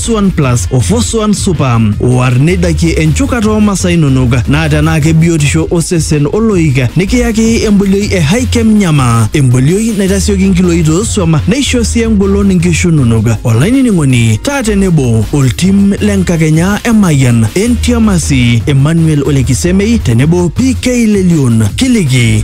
Suan Plus o Fosuan Super. War neidakie enchukata oo masaa inonok naa tenaa kebiotisho osesen oloik nikiyaki embolioi e Hikem Nyama. Embolioi naitasioki nkiloi toosuam neisho sii engolon nkishu inonok. Olainining'oni taa tenebo oltim le nkakenya e Mayian, Entiamasi, Emmanuel Olekisemei tenebo PK Lelion. Kiliki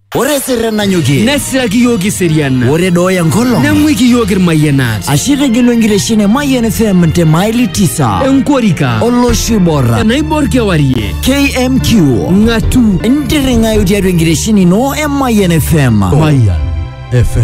Ore sirren nanyokie. Nesiraki iyiook iserian. Ore dooya nkolong. Neng'uiki iyiook irmayianat. Ashe itegelu enkitesheni e Mayian FM te maili tisa. Enkorika. Olosho oiborra. Enaibor kewarie. KMQ. Ng'atu. Ntirring'ayu tiatua enkitesheni ino e Mayian FM. Mayian FM.